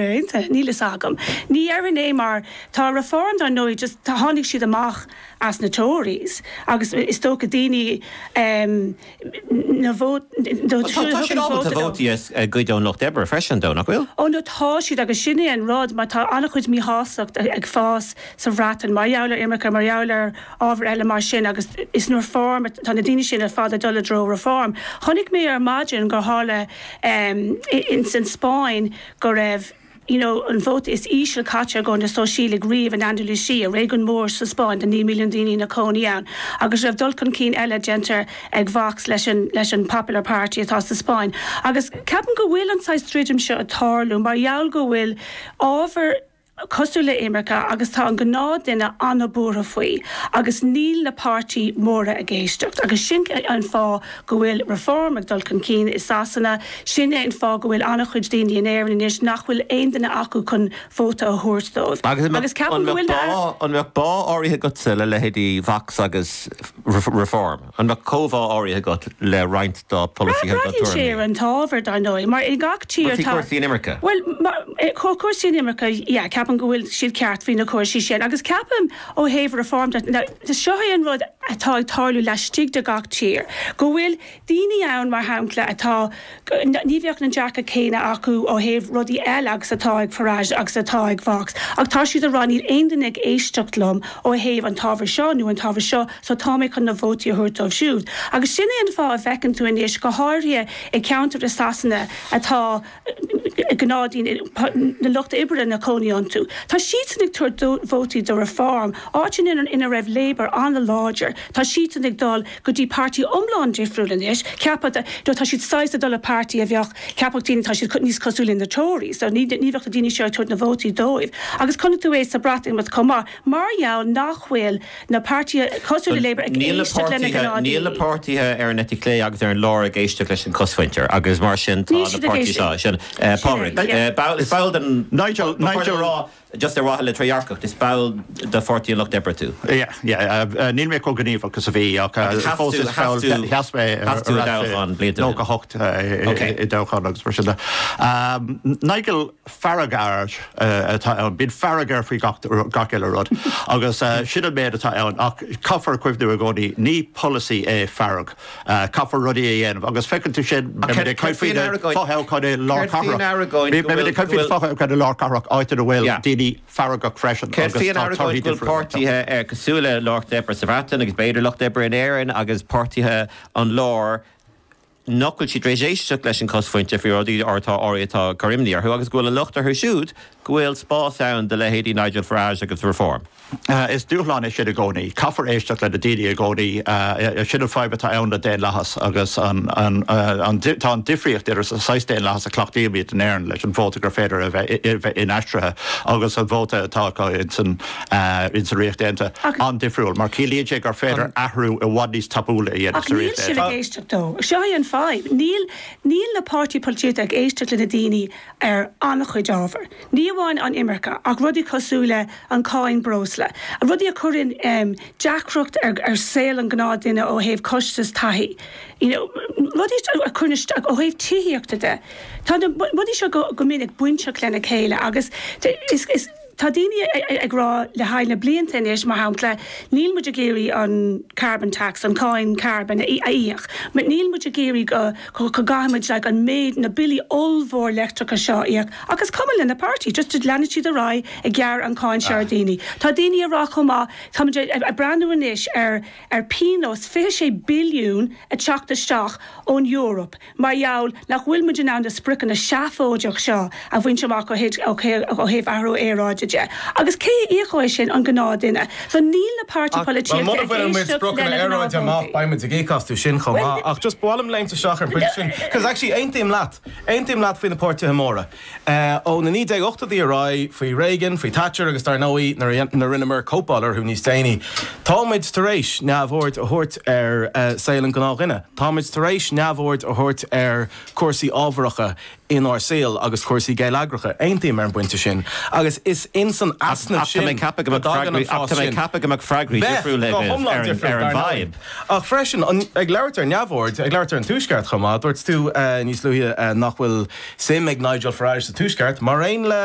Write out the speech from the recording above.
Aontaithe, níl fhios agam. Ní dhéarfainn é mar tá Reform dar ndóigh just tháinig siad amach as na Tories agus is dócha daoine ehm na vótaí tá tá siad ábalta vótaí a a goid ón lucht oibre freisin dar ndóigh nach bhfuil? Ó no tá siad agus sin é an rud mar tá an-chuid míshásacht ag fás sa Bhreatain mar gheall ar imirce mar gheall ar ábhair eile mar sin agus is na Reform tá na daoine sin ar fad ag dul i dtreo Reform. Chonaic mé ar maidin gur tharla ehm in san Spáinn go raibh you know an vóta is ísle caite do na Sóisialaigh riamh in Andalucia, réigiún mór sa Spáinn de 9 milliún daoine ina gcónaí ann, agus go raibh dul chun cinn eile déanta ag Vox leis an leis an Popular Party atá sa Spáinn. Agus ceapaim go bhfuil an saghas druidim seo ag tarlú mar gheall go bhfuil ábhar. cosúil le imirce agus tá an gnáth duine an-buartha faoi agus níl na páirtí móra ag éisteacht agus sin é an fáth go bhfuil Reform ag dul chun cinn i Sasana, sin é an fáth go bhfuil an-chuid daoine in Éirinn anois nach bhfuil aon duine acu chun vóta a thabhairt dóibh agus ceapaim go bhfuil. An mbeadh bá áirithe agatsa le leithéidí Vox agus Reform? An mbeadh comhbhá áirithe agat le roinnt dá bpolasaithe agus dá dtuairimí? Braitheann sé ar an t-ábhar, dar ndóigh, mar i ngach tír tá... Cúrsaí, cúrsaí an imirce? Bhuel, cúrsaí an imirce, yeah, ceapaim go bhfuil siad ceart faoi na cúrsaí sin agus ceapaim ó thaobh Reform de, now, seo é an rud atá ag tarlú laistigh de gach tír, go bhfuil daoine ann, mar shampla, atá. Ní bheadh an dearcadh céanna acu ó thaobh rudaí eile agus atá ag Farage agus atá ag Vox. Ach tá siad ag rá, 'Níl aon duine ag éisteacht liom ó thaobh an t-ábhar seo nó an t-ábhar seo, so tá mé chun na vótaí a thabhairt dóibh siúd. Agus sin é an fáth a bhfeiceann tú anois, go háirithe i gceantair i Sasana atá gnáthdhaoine, na lucht oibre ina gcónaí iontu, tá siadsan ag tabhairt vótaí do Reform, áiteanna ina raibh Labour an-láidir, tá siadsan ag dul. go dtí páirtí iomlán difriúil anois, ceaptha, you know, tá siad saghas ag dul le páirtí a bheadh, cheapfadh daoine, tá siad níos cosúil le na Tories, so ní bheadh na daoine seo ag tabhairt na vótaí dóibh. Agus chonaic tú é sa Bhreatimeacht chomh maith, mar gheall nach bhfuil na páirtithe cosúil le Labour ag éisteacht le na gnáthdhaoine. Níl na páirtithe ar an eite chlé agus ar an lár ag éisteacht leis an chosmhuintir agus mar sin tá na páirtithe seo, Pádraig, is ball den, Nigel, Nigel, just ar mhaithe le trédhearcacht, is ball de Pháirtí an Lucht Oibre tú. Yeah, yeah, níl mé chomh gníomhach is a bhí ach fós is ball de, sheas mé ar ais i 98 i dtoghchán agus mar sin de. Nigel Farage atá ann, bíonn fearg air faoi gach uile rud agus sin an méid atá ann ach caithfear cuimhniú i gcónaí, ní polasaí é fearg. Caithfear rudaí a dhéanamh agus feicfidh tú sin. Ach céard a bhí in Aragon? Céard a bhí in Aragon go bhfuil. Bhí féach an fothoghchán i lár cathrach, áit ina bhfuil daoine feargach freisin. Céard a bhí in Aragon go bhfuil páirtithe ar cosúil leis an Lucht Oibre sa Bhreatain agus b'fhéidir Lucht Oibre in Éirinn agus páirtithe an láir nach bhfuil siad tar éis éisteacht leis an gcosmhuintir faoi rudaí atá orthu atá ag cur imní orthu agus go bhfuil an locht orthu siúd go bhfuil spás ann do leithéidí Nigel Farage agus Reform. Is dúshlán é sin i gcónaí. Caithfear éisteacht leis na daoine i gcónaí. Sin an fadhb atá ann le daonlathas agus tá an difríocht idir an saghas daonlathas a chleachtaímid in Éirinn leis an vóta gur féidir a bheith inaistrithe agus an vóta atá acu ins an Ríocht Aontaithe an-difriúil mar ciallaíonn sé gur féidir athrú i bhfad níos tapúla a dhéanamh sa Ríocht Aontaithe. Ach níl siad ag éisteacht dó. Seo é an fadhb. Níl na páirtithe polaitíochta ag éisteacht leis na daoine ar an-chuid ábhar. Ní amháin an imirce, ach rudaí cosúil leis an cáin breosla, rudaí a chuireann deacracht ar ar saol an gnáthdhuine ó thaobh costas taithí, you know, rudaí a chuireann isteach ó thaobh tithíochta de. Tá na rudaí seo go go minic bainteach lena chéile agus is is tá daoine ag rá le haghaidh na blianta anois, mar shampla, níl muid ag iarraidh an carbon tax, an cáin carbóin, a íoc. Níl muid ag iarraidh go. go gcaithfimid an méid, na billí ollmhór leictreacha seo a íoc. Ach is cuma leis na páirtithe, just leanfaidh siad ar aghaidh ag gearradh an cáin seo ar dhaoine. Tá daoine ag rá chomh maith, táimid ag breathnú anois ar pionós 26 billiún ag teacht isteach ón Eoraip mar gheall nach bhfuil muid in ann na spriocanna seafóideach seo a bhaint amach ó thaobh athrú aeráide de. Agus cé a íocóidh sin, an gnáthdhuine? Tá níl na páirtithe polaitíochta ag éisteacht leis na gnáthvótálaithe. Muna mbainfimid spriocanna aeráide amach, beimid ag íoc astu sin chomh maith. Ach just ba mhaith liom léimt isteach ar an bpointe sin, cos actually aontaím leat, aontaím leat faoi na páirtithe móra. Ó na 1980idí ar aghaidh, faoi Reagan, faoi Thatcher agus dar ndóigh nuair a rinneamar cóipeáil orthu níos déanaí, táimid tar éis neamhaird a thabhairt ar saol an gnáthdhuine, táimid tar éis neamhaird a thabhairt ar chúrsaí ábharacha inár saol agus cúrsaí geilleagracha. Aontaím ar an bpointe sin agus is ins an easnamh sin go dtagann an fás sin. Ach tá mé ag ceapadh go mbeadh freagraí, ach tá mé ag ceapadh go mbeadh freagraí difriúil leo ar an bhfadhb. Ach freisin, ag labhairt ar neamhaird, ag labhairt ar an Tuaisceart chomh maith, dúirt tú níos luaithe nach bhfuil suim ag Nigel Farage sa Tuaisceart, mar aon le.